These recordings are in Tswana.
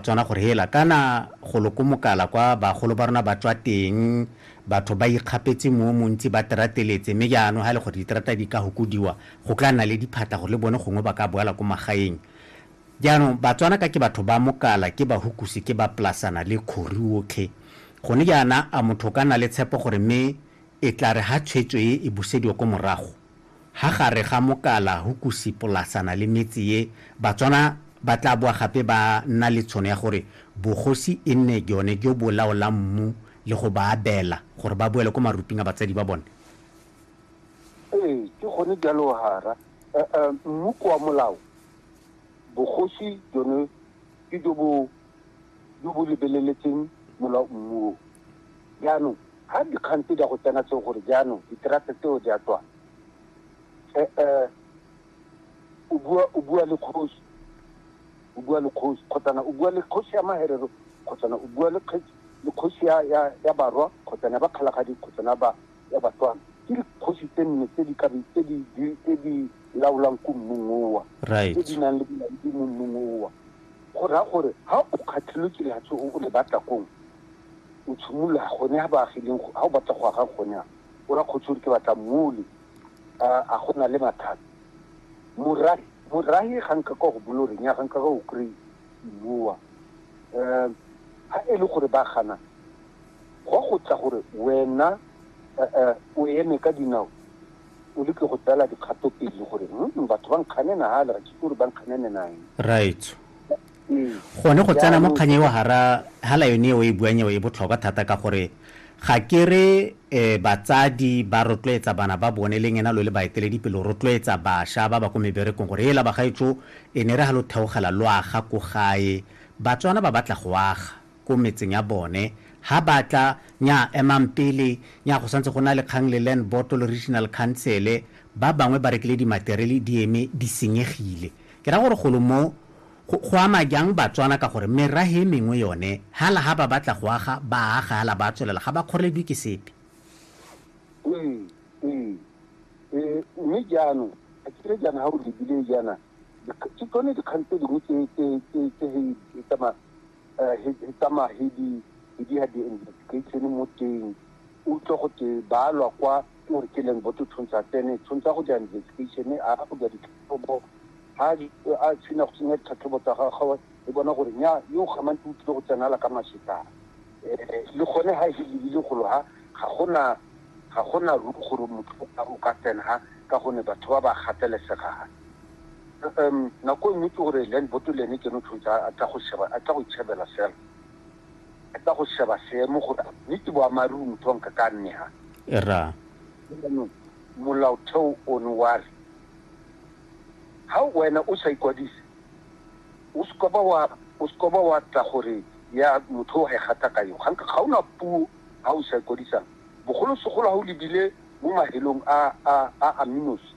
Tswana gore hela kana golo ko Mokala kwa bagolo ba rona ba tswa teng, batho ba ikgapetse mo o montsi ba terateletse mme jaanong ha e le gore diterata di ka hokodiwa go tla nna le diphatla gore le bone gongwe ba ka boela ko magaeng. Jaanong Batswana ka ke batho ba Mokala, ke Bahukusi, ke ba Plasana le Khoriokhe. Gone jaana a motho o ka nna le tshepo gore mme e tla re ha tshwetso e e busediwa ko morago? Ha gare ga Mokala, Hukusi, Polasana le metse ye, Batswana ba tla boa gape ba nna le tshono ya gore bogosi e nne jone jo bo laolang mmu le go ba abela gore ba boele ko maruping a batsadi ba bone. Ee, ke gone jalo Hara. Mmu ke wa molao, bogosi jone ke jo bo. jo bo lebeleletseng molao mmu o. Jaanong, ga dikgang tse di a go tsena tseo gore jaanong diterata tseo di a tswa, ee, o bua, o bua le kgosi, o bua le kgosi, kgotsana o bua le kgosi ya Maherero, kgotsana o bua le kgosi, le kgosi ya, ya, ya Barwa, kgotsana ya Bakgalagadi, kgotsana ya ba, ya Batswana ke dikgosi tse nne tse di kabe tse di tse di laolang ko mmung owa tse di nang le bolaodi mo mmung owa go raya gore ha o kgatlhilwe ke lehatshe o le batla kong o tshimolola gone ha ba agileng ha o batla go aga gone a o ra kgotsi gore ke batla mole a go na le mathata morahi morahi ga nka ka go bolo reng ya ga nka ka go kry-a um ha e le gore ba gana Gwa go tla gore wena o eme ka dinao o leke go tsayela dikgato pele gore mm, batho ba nkganena hale ga ke gore ba nkganenenang. Right. Ee. gone go tsena mo Jaanong- kganye wa hara hala yone eo e buang eo e botlhokwa thata ka gore ga ke re eh, batsadi ba rotloetsa bana ba bone le ngena lo le baeteledipele o rotloetsa basha ba ba ko meberekong gore ela bagaetso e ne re ga lo theogela lo aga ko gae batswana ba batla go aga ko metseng ya bone ha batla nya emang pele nya go santse go na le kgang le land bottle regional council ba bangwe ba rekile di material di eme di senyegile ke ra gore golo mo go ama jang batswana ka gore merra he mengwe yone hala ha ba batla go aga ba aga hala ba tswelela ga ba kgoreledwe ke sepe mm, mm. Eh, mme jaanong a kile jaana ga o lebile jaana ke tsone dikgang tse dingwe tse tsamaya uh, he, he tsamaya he di he di had the investigation mo teng o tlo go te ba lwa kwa ke gore ke leng bo to tshontsha tsene tshontsha go dira investigation a go dira ditlhobo ha a tshina go tsenya ditlhatlhobo tsa gagwe e bona gore nya yo gamantse o tlile go tsenala ka mashetana eh, le gone ha he lebile golo ha ga gona ga gona ruri gore motho o ka tsena ha ka gone batho ba ba gatelesegang Um nako e nngwe ke gore land boto le ene keno tshwantse a tla go sheba a tla go itšhabela fela a tla go sheba seemo gore mme ke boammaaruri motho wa nka ka nne ha ra molaotheo one wa re ha wena o sa ikwadise o sekoba wa o sekoba wa tla gore ya motho wa hegata ka yo ga nka ga ona puo ha o sa ikwadisang bogolo segolo ha o lebile mo mahelong a a a aminosi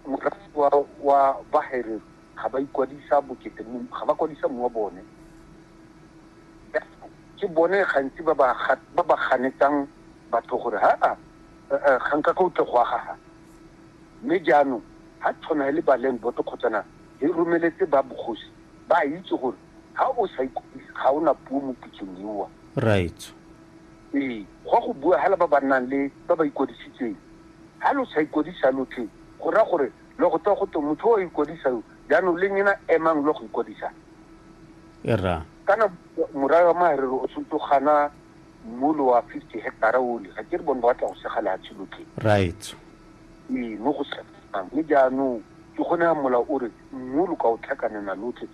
Morafe wa wa Baherero ga ba ikwadisa bokete ga ba kwadisa mmu wa bone. Ke bone gantsi ba ba ba ba ganetsang batho gore ha a ga nka ka utlwe go aga ha. Mme jaanong ha tshwana le ba land boto kgotsana e romeletse ba bogosi ba itse gore ha o sa ikwadisa ga ona puo mo pitsong ewa. Right. Ee, go a go bua fela ba ba nnang le ba ba ikwadisitsweng. Fa lo sa ikwadisa lotlhe, go raya gore lo go tewa gotwe motho o a ikwadisa yo, jaanong le nyena emang lo go ikwadisa. Era. Kana morafe wa maherero o tshwanetse go gana mmole wa 50 hektara ole, ga ke re bone ba batla go sega lefatshe lotlhe. Raetsho. Ee, mo go sa siamang. Mme jaanong ke gone fa molao o re mmole o ka o tlhakanana lotlhe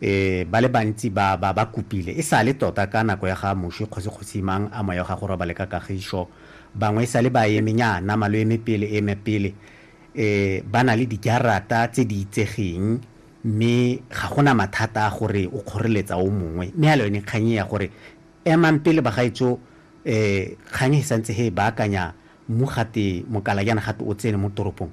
E, ba le bantsi ba, ba, ba kopile, e sale tota ka nako ya ga Moshe, Kgosi, Kgosi, mang a Moya wa Gago o robale ka kagišo? Bangwe e sale ba eme, nyaa, nama lo eme pele, eme pele. E, ba na le dijarata tse di itsegeng, mme ga go na mathata a gore o kgoreletsa o mongwe. Mme hela yone kgang e ya gore, Emang pele, bagaetsho, e, kgang e santse he baakanya, mmu gate, mokalajana gate o tsene mo toropong.